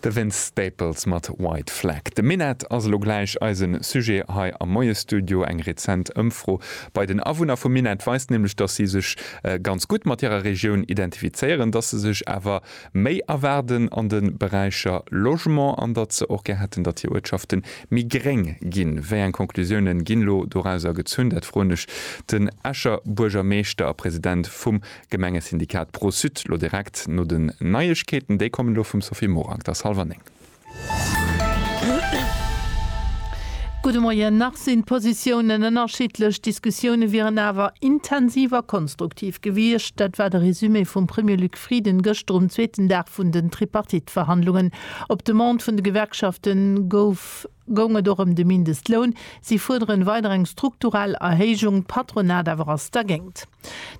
De Vince Staples mat White Flag. De Minett ass elo gläich eisen Sujet hei am Moiesstudio. Eng rezent Ëmfro bei den Awunner vum Minett weist nämlech, dass si sech ganz gutt mat hirer Regioun identifizéieren, dass se sech awer méi erwaarden an de Beräicher Logement an datt se och gär hätten, datt hir Uertschafte méi gréng ginn. Wéi eng Conclusiounen ginn elo dorauser gezunn? Dat froen ech den Escher Buergermeeschter a President vum D'Gemengesyndikat Pro-Sud lo direkt no den Neiegkeeten. Déi kommen elo vum Sophie Morang. Et ass hallef an néng. Gudde Moien. Nach sinn d'Positiounen ënnerschiddlech, d'Diskussioune wieren awer intensiv a konstruktiv gewiescht. Dat war de Resumé vum Premier Luc Frieden gëschter um zweeten Dag vun den Tripartite-Verhandlungen. Op Demande vun de Gewerkschafte gouf Goung et och ëm de Mindestloun? Si fuerderen weider eng strukturell Erhéijung, d'Patronat awer ass dergéint.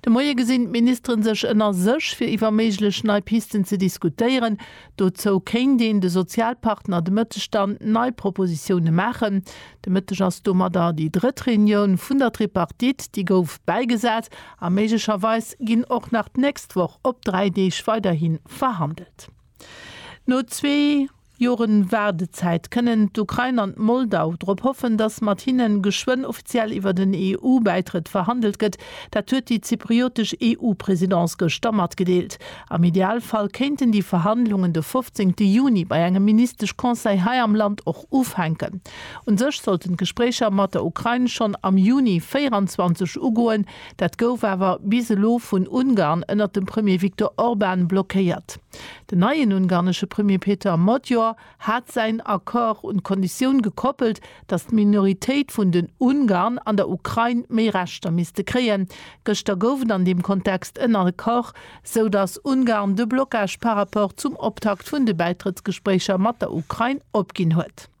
De Moie gesinn d'Ministeren sech ënner sech, fir iwwer méiglech nei Pisten ze diskutéieren. Dozou kéint een de Sozialpartner de Mëtteg dann nei Propositioune maachen. De Mëtteg ass domadder déi drëtt Reunioun vun der Tripartite, déi gouf bäigesat. A méiglecherweis ginn och nach d'nächst Woch op dräi Deeg weiderhi verhandelt. No zwee. Joren Waardezäit, kënnen d'Ukrain an d'Moldau drop hoffen, datt mat hinnen geschwënn offiziell iwwer den EU-Bäitrëtt verhandelt gëtt. Dat huet déi zypriotesch EU-Presidence gëschter matgedeelt. Am Idealfall kéinten déi Verhandlungen de 15 Juni bei engem Ministesch-Conseil hei am Land och ufänken. U sech sollten d'Gespréicher mat der Ukrain schonn am Juni 24 ugoen. Dat gouf awer bis elo vun Ungarn ënnert dem Premier Viktor Orban blockéiert. Den neien ungarnesche Premier Peter Magyar hat säin Accord un d'Konditioun gekoppelt, datt d'Minoritéit vun den Ungarn an der Ukrain méi Rechter misste kréien. Gëschter gouf et an deem Kontext en Accord, sou datt Ungarn de Blocage par rapport zum Optakt vun de Bäitrëttsgespréicher mat der Ukrain opginn huet.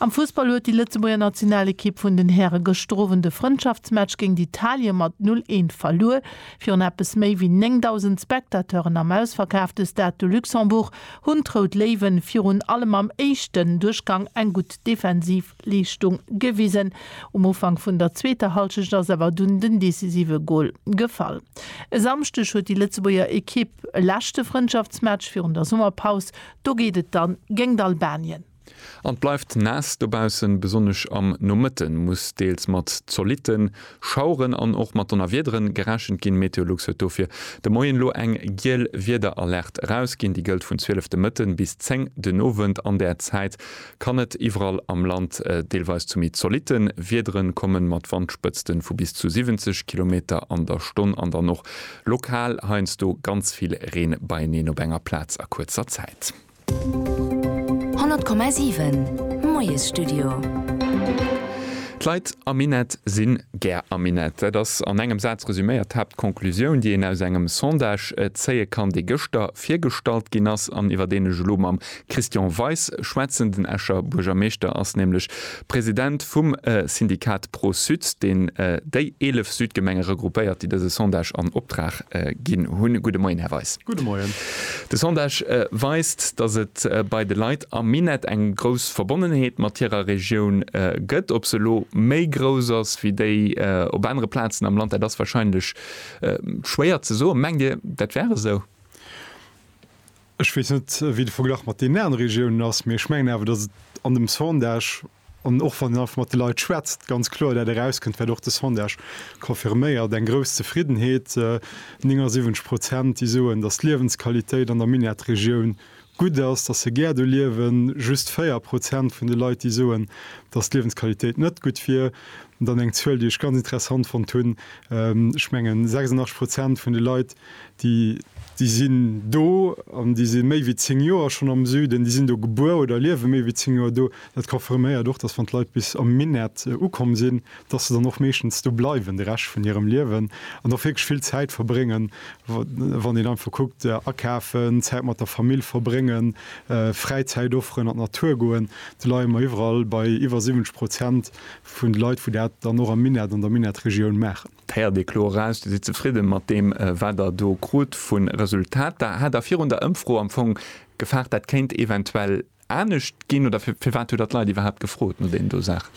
Am Fussball huet déi Lëtzebuerger Nationalekipp vun den Häre gëschter Owend de Frëndschaftsmatch géint Italien mat 0, 1 verluer. Virun eppes méi wéi 9.000 Spectateuren am ausverkaafte Stade de Luxembourg hunn d'Rout Léiwen virun allem am éischten Duerchgang eng gutt defensiv Leeschtung gewisen. Um Ufank vun der zweeter Hallschecht ass awer dunn den decisive Gol gefall. E Samschdeg huet déi Lëtzebuerger Ekipp e leschte Frëndschaftsmatch virun der Summerpaus Do geet et dann géngt Albanien. An et bleift naass dobaussen. Besonnesch am Nomëtte muss deels mat zolitte Schaueren an och mat Donnerwiederen gerechent ginn. Meteolux huet dofir de Moien elo eng giel Wiederalerte erausginn. Déi gëllt vun 12 de Mëtten bis 10 den Owend. An där Zäit Kann net iwwerall am Land. Deelweis zu méi zolitte Wiedere komme mat Wandspëtzte vu bis zu 70 Kilometer an der Stonn an dann och lokal heiansdo ganz vill Reen beieneen op enger Plaz a kuerzer Zäit. 100,7 Moiesstudio. D'Leit am Minett si gär am Minett. Dat ass an engem Saz resüméiert d'Haaptconclusioun, déi een aus engem Sondage zéie kann, dee gëschter virgestallt ginn ass an iwwer deen ech elo mam Christian Weis schwätzen. Den Escher Buergermeeschter ass nämlech President vum Syndikat Pro-Sud, deen déi 11 Südgemenge regroupéiert, déi dëse Sondage an Optrag ginn hunn. Gudde Moien, Här Weis. Gudde Moien. De Sondage weist, datt et bei de Leit am Minett eng grouss Verbonnenheet mat hirer Regioun gëtt. Ob se elo méi grouss ass wéi déi op anere Plazen am Land, dat ass warscheinlech schwéier ze soen. Mengt Dir, dat wär esou? Ech weess net, wéi de Verglach mat deenen anere Regiounen ass, mee ech mengen awer, datt et an dem Sondage, an och wann een einfach mat de Leit schwätzt, ganz kloer dat erauskënnt, wat och de Sondage confirméiert, eng grouss Zefriddenheet. 79 Prozent, déi soen, datt d'Liewensqualitéit an der Minettregioun gutt ass, datt se gär do liewen. Just 4 Prozent vun de Leit, déi soen, datt d'Liewensqualitéit net gutt wier. Dann eng Zuel, déi ech ganz interessant fonnt hunn, ech mengen 86 Prozent vun de Leit, Déi sinn do an déi si méi wéi zéng Joer schonn am Süden. Déi sinn do gebuer oder liewe méi wéi zéng Joer do. Dat confirméiert och, dass wann d'Leit bis am Minett ukomm sinn, dass se dann och meeschtens do bleiwen de Rescht vun hirem Liewen an och wierklech vill Zäit verbréngen, wann een einfach kuckt, akafen, Zäit mat der Famill verbréngen, Fräizäit offeren, an d'Natur goen. Do leie mer iwwerall bei iwwer 70 Prozent vun de Leit, wou dat dann och am Minett, an der Minettregioun maachen. Héiert ee kloer eraus, Dir sidd zefridde mat deem, wat Der do krut vu Resultater. Hat Der virun der Ëmfro am Fong gefaart, dat kéint eventuell anescht ginn? Oder firwat hutt Der d'Leit iwwerhaapt gefrot no deenen do Saachen?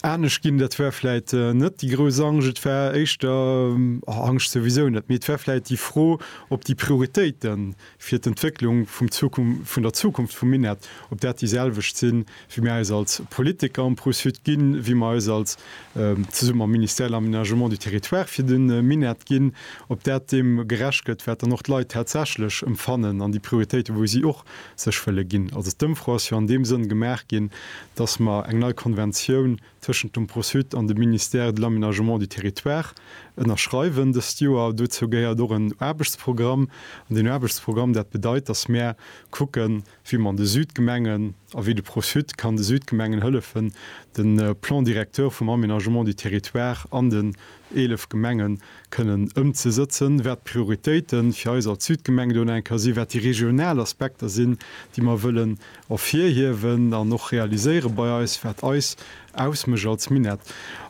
Anescht ginn, dat war vläicht net déi grouss Angscht. Et war éischter, Angscht souwisou net, mee et war vläicht déi Fro op déi Prioritéiten, fir d'Entwécklung vun der Zukunft vum Minett, ob dat déi selwecht sinn, wéi mir eis als Politiker am Pro-Sud ginn, wéi mir eis als, zesumme mam Ministère de l'Aménagement du Territoire, fir de Minett ginn, ob dat deem gerecht gëtt, wat dann och d'Leit tatsächlech empfannen an déi Prioritéiten, wou si och sech wëlle ginn. Also d'Ëmfro ass jo an deem Sënn gemaach ginn, dass mer eng nei Konventioun, tëschent dem Pro-Sud an dem Ministère de l'Aménagement du Territoire ënnerschreiwen dëst Joer. Dozou gehéiert och en Aarbechtsprogramm. An deen Aarbechtsprogramm, dat bedeit, datt mär kucken, wéi mer an de Südgemengen a wéi de Pro-Sud kann de Südgemengen hëllefen, de Plan directeur vum Aménagement du Territoire an den 11 Gemengen kënnen ëmzesëtzen, wat d'Prioritéite fir eis als Südgemeng do eng Kéier sinn, wat déi regional Aspekter sinn, déi mer wëllen ervirhiewen an och realiséiere bei eis, wat eis ausmécht als Minett.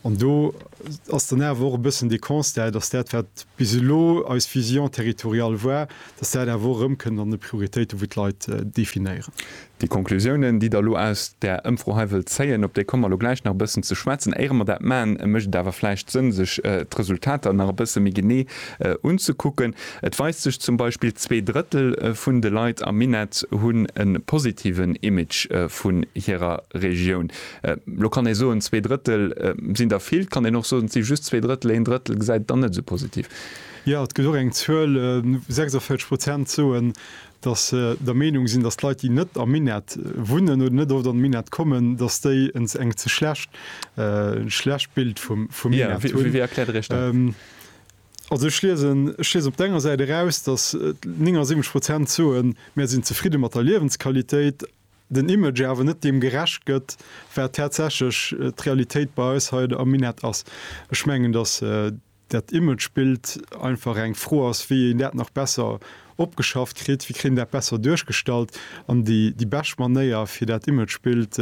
An do ass dann awer och e bëssen de Constat, dass dat, wat bis elo eis Vision territoriale war, dass dat awer och erëmkënnt an de Prioritéiten, wou d'Leit definéieren. Déi Conclusiounen, déi Der elo aus där Ëmfro hei wëllt zéien, op déi komme mer elo gläich nach e bëssen ze schwätzen. Éiere mer dat maachen, mécht et awer vläicht Sënn, sech d'Resultater nach e bësse méi genee unzekucken. Et weist sech zum Beispill, zwee Drëttel vun de Leit am Minett hunn e positiven Image vun hirer Regioun. Elo kann ee soen, zwee Drëttel sinn der vill. Et kann een och soen, et si just zwee Drëttel, een Drëttel gesäit et dann net esou positiv. Jo, et gëtt och eng Zuel, 46 Prozent soen, dass se der Meenung sinn, dass d'Leit, déi net am Minett wunnen oder net oft an d'Minett kommen, dass déi en ze schlecht schlecht Bild vum vum Minett hunn. Jo, wéi erkläert Der Iech dat? Also ech liesen ech liesen op der enger Säit eraus, dass 79 Prozent soen, mär sinn zefridde mat der Liewensqualitéit, den Image awer net deem gerecht gëtt, wat tatsächlech d'Realitéit bei eis hei am Minett ass. Ech mengen, dass. dat Imagebild einfach eng Fro ass, wéi een dat nach besser opgeschafft kritt, wéi kritt een dat besser duerchgestallt. An déi bescht Manéier, fir dat Imagebild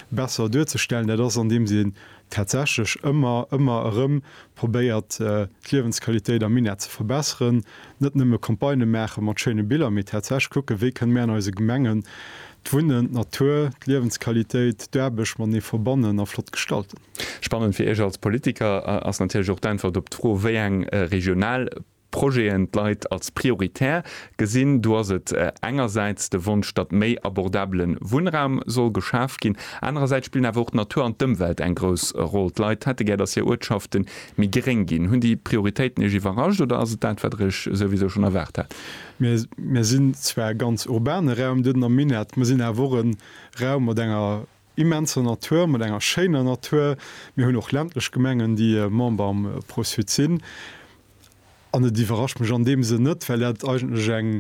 besser duerzestellen, dat ass, andeems een tatsächlech ëmmer, ëmmer erëm probéiert, d'Liewensqualitéit am Minett ze verbesseren, net nëmme Campagnë maache mat schéine Biller, mee tatsächlech kucken, wéi kënne mir an eise Gemengen d'Wunnen, d'Natur, d'Liewensqualitéit, d'Aarbecht matenee verbannen a flott gestalten. Spannend fir Iech als Politiker ass natierlech och d'Äntwert op d'Fro, wéi eng regional Projeten d'Leit als prioritär gesinn. Do ass et engersäits de Wonsch, datt méi abordabele Wunnraum soll geschaf ginn. Anerersäits spillen awer och d'Natur an d'Ëmwelt eng grouss Roll. D'Leit hätte gär, datt hir Uertschafte méi gréng ginn. Hunn déi Prioritéiten Iech iwwerrascht oder ass et dat, wat Der Iech souwisou schonn erwaart hat? Mir sinn zwar e ganz urbane Raum, Dëden am Minett. Mir sinn awer och e Raum mat enger immenser Natur, mat enger schéiner Natur. Mir hunn och ländlech Gemengen, déi Member am Pro-Sud sinn. An et iwwerrascht mech an deem Sënn net, well dat eigentlech eng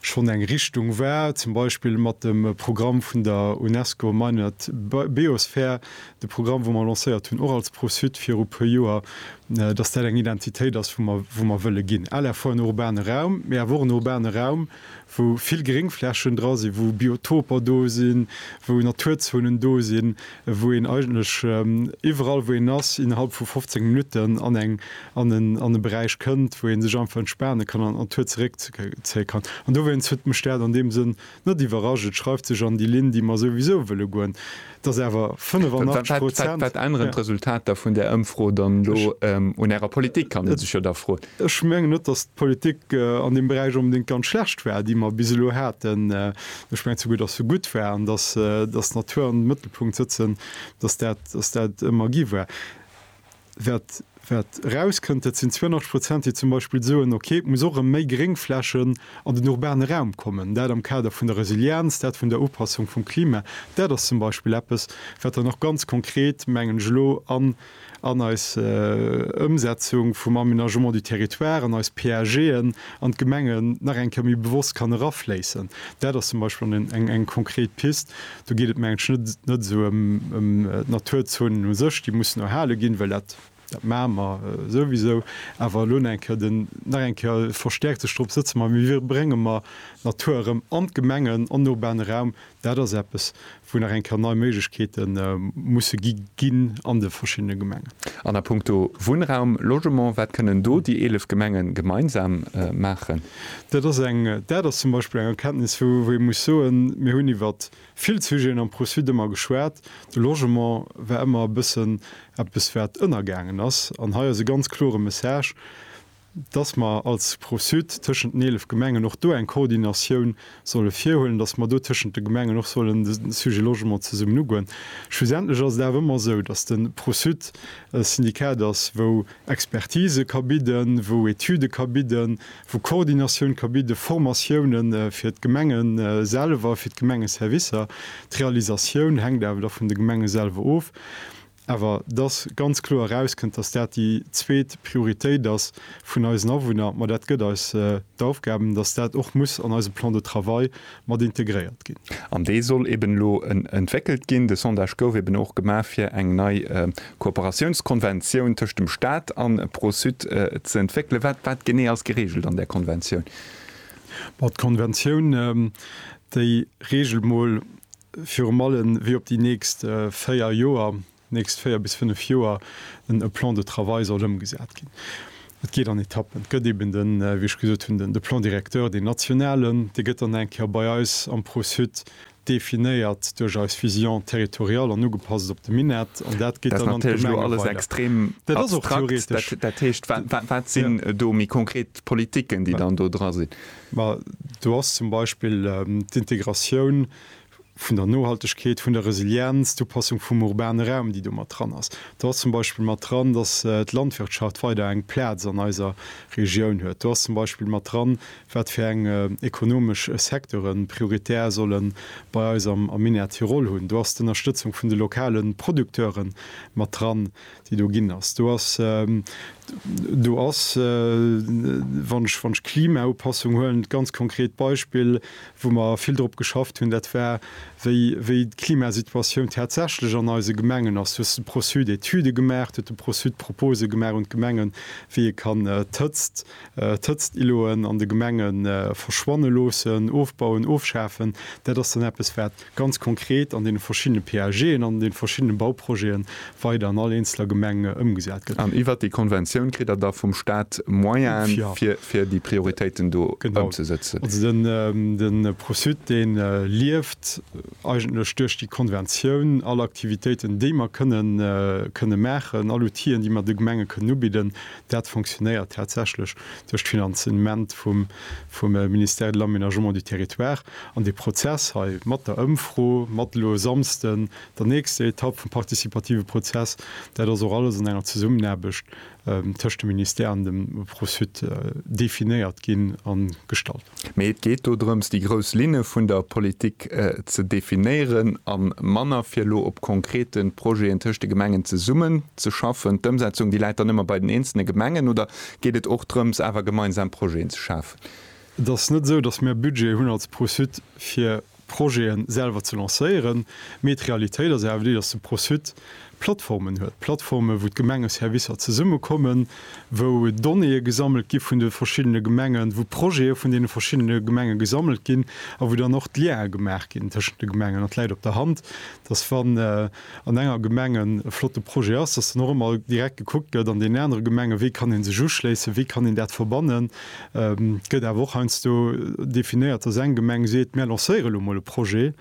schonn eng Richtung war, zum Beispill mat dem Programm vun der UNESCO Minett Biosphere, de Programm, wou mer lancéiert hunn, och als Pro-Sud viru puer Joer, dass dat eng Identitéit ass, wou mer wëlle ginn. LRV en urbane Raum, mee awer och en urbane Raum, wou vill Gréngflächen dra sinn, wou Biotoper do sinn, wou Naturzonen do sinn, wou een eigentlech iwwerall, wou een ass, innerhalb vu 15 Minutten an eng, an en, an e Beräich kënnt, wou ee sech einfach entspane kann an d'Natur zeréckzéie kann. An dowéinst huet mech dat an deem Sënn net iwwerrascht. Et schreift sech an déi Linn, déi mer souwisou wëlle goen. Et ass awer 85 Prozent. Wat änneren d'Resultater vun där Ëmfro dann elo un Ärer Politik, kann ee sech jo da froen. Ech mengen net, datt d'Politik an deem Beräich onbedéngt ganz schlecht war, déi mer bis elo haten. Ech mengen souguer, datt se gutt war an datt d'Natur am Mëttelpunkt sëtzen, datt dat ëmmer gi war. Wat, wat erauskënnt, dat sinn 82 Prozent, déi zum Beispill soen, okay, et muss och erëm méi Gréngflächen an den urbane Raum kommen, dat am Kader vun der Resilienz, dat vun der Upassung vum Klima. Dat ass zum Beispill eppes, wat dann och ganz konkret, mengen ech, elo an, an eis Ëmsetzung vum Aménagement du territoire, an eis PAGen an d'Gemengen nach eng Kéier méi bewosst kann erafléissen. Dat ass zum Beispill eng, eng konkret Pist. Do geet et menge ech net esou ëm d'Naturzone u sech, déi mussen erhale ginn, well dat maache mer souwisou. Awer elo nach eng Kéier den, nach eng Kéier verstäerkt sech drop sëtzen, ma wéi brénge mer d'Natur erëm an d'Gemengen, an den urbane Raum? Dat ass eppes, wou nach eng Kéier nei Méiglechkeete musse gi ginn an de verschiddene Gemengen. An a puncto Wunnraum, Logement, wat kënnen do déi 11 Gemenge gemeinsam maachen? Dat ass eng, dat ass zum Beispill eng Erkenntnis, wou ee muss soen, mir hunn iwwer vill Sujeten am Pro-Suite ëmmer geschwat, de Logement war ëmmer e bëssen eppes, wat ënnergaangen ass. An hei ass e ganz klore Message, dass mer als Pro-Suite tëschent den 11 Gemengen och do eng Koordinatioun solle virhuelen, dass mer do tëschent de Gemengen och sollen de Sujet Logement zesummen ugoen. Schlussendlech ass et awer ëmmer esou, dass de Pro-Suite e Syndikat ass, wou Expertise ka bidden, wou Etüde ka bidden, wou Koordinatioun ka bidden, Formatioune fir d'Gemenge selwer, fir d'Gemengeservicer. D'Realisatioun hänkt awer da vun de Gemenge selwer of. Awer et ass ganz kloer erauskënnt, dass dat déi zweet Prioritéit ass vun eisen Awunner. Ma dat gëtt eis d'Aufgaben, dass dat och muss an eise Plan de travail mat integréiert ginn. An dee soll eben elo entwéckelt ginn. De Sondage gouf eben och gemaach, fir eng nei Kooperatiounskonventioun tëscht dem Staat a Pro-Sud ze entwéckelen. Wat, wat genee ass geregelt an där Konventioun? Bon, d'Konventioun, déi regelt mol virun allem, wéi op déi nächst véier Joer nächst véier bis fënnef Joer en e Plan de travail soll ëmgesat ginn. Et geet an Etappen. Et gëtt eeben den, wéi ech gesot hunn, de Plan directeur, deen nationalen. Dee gëtt dann eng Kéier bei eis am Pro-sud definéiert duerch eis Vision territoriale an ugepasst op de Minett. An dat geet dann an d'Gemenge weider. Dat ass och theoretesch. Dat heescht, wat sinn do méi konkret d'Politiken, déi dann do dra sinn? Ma do ass zum Beispill d'Integratioun vun der Nohaltegkeet, vun der Resilienz, d'Upassung vum urbane Raum, déi do mat dran ass. Do ass zum Beispill mat dran, dass d'Landwirtschaft weider eng Plaz an eiser Regioun huet. Do ass zum Beispill mat dran, wat fir eng ekonomesch Secteure prioritär solle bei eis am Minière Tirol hunn. Do ass d'Ënnerstëtzung vun de lokale Producteure mat dran. déi do ginn ass, do ass, do ass, wann ech, wann ech d'Klimaupassung huelen, d'ganz konkret Beispill, wou mer vill drop geschafft hunn, dat war, wéi, wéi d'Klimasituatioun tatsächlech an eise Gemengen ass. Du hues de Pro-sud Etüde gemaach, huet de Pro-sud Proposë gemaach un d'Gemengen, wéi ee kann d'Hëtzt, d'Hëtztiloen an de Gemenge verschwanne loossen, ofbauen, ofschafen. Dat ass dann eppes, wat. ganz konkret an deene verschiddene PAGen an de verschiddene Bauprojete weider an all eenzeler Gemeng ëmgesat gëtt. An iwwert déi Konventioun kritt Der da vum Staat Moyenen, fir déi Prioritéiten do ëmzesëtzen? Genau. Also de Pro-sud, dee lieft eigentlech duerch déi Konventioun. All Aktivitéiten, déi mer kënne maachen, all Outile, déi mer de Gemenge kënnen ubidden, dat fonctionnéiert tatsächlech duerch d'Finanzement vum Ministère de l'Aménagement du Territoire. An dee Prozess hei mat der Ëmfro, mat elo e Samsden der nächster Etapp vum partizipative Prozess, dat ass och alles an enger Zesummenaarbecht tëscht dem Ministère an dem Pro-sud definéiert ginn a gestallt. Mee et geet do drëms, déi grouss Linne vun der Politik ze definéieren a manner fir elo op konkrete Projeten tëscht de Gemengen zesummenzeschaffen. D'Ëmsetzung, déi läit dann ëmmer bei den eenzelne Gemengen oder geet et och drëms, awer gemeinsam Projeten ze schafen? Et ass net esou, datt mir Budget hunn als Pro-Sud fir Projete selwer ze lancéieren, mee d'Realitéit ass awer déi, datt de Pro-Sud Plattformen huet, Plattformen, wou d'Gemengeservicer zesummekommen, wou Donnéeë gesammelt gi vun de verschiddene Gemengen, wou Projete vun deene verschiddene Gemenge gesammelt ginn a wou dann och d'Lientë gemaach ginn tëschent de Gemengen. An et läit op der Hand, datt wann an enger Gemeng e flotte Projet ass, dass dann och ëmmer direkt gekuckt gëtt an deenen anere Gemenge wéi kann ee sech uschléissen, wéi kann een dat verbannen. Et gëtt awer och heiansdo definéiert, dass eng Gemeng seet, mir lancéiere lo mol e Projet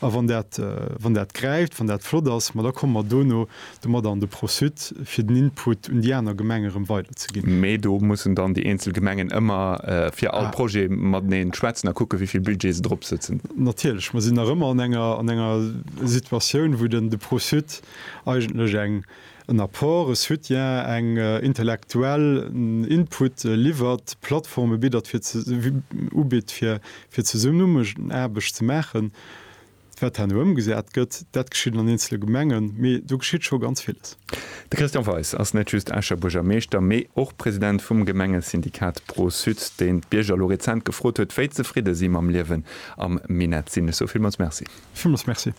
a wann dat, wann dat gräift, wann dat flott ass, ma da komme mer dono domadder an de Pro-sud, fir den Input un déi aner Gemenge erëm weiderzeginn. Mee do mussen dann déi eenzel Gemengen ëmmer fir all Projet mateneen schwätzen a kucke wéi vill Budget se drop sëtzen. Natierlech, mer sinn nach ëmmer an enger, an enger. Situatioun, wou den de Pro-Sud eigentlech eng, en Apport, e Soutien, eng intellektuell, en Input liwwert, Plattforme biddert fir ze, ubitt fir, fir Zesummenaarbecht ze maachen. Wat herno ëmgesat gëtt, dat geschitt an eenzele Gemengen, mee do geschitt scho ganz villes. De Christian Weis ass net just Escher Buergermeeschter, mee och President vum Gemengesyndikat Pro-Sud, deen d'Bierger elo rezent gefrot huet, wéi zefridde si mam Liewen am Minett sinn. Ech soe villmools Merci. Villmools Merci.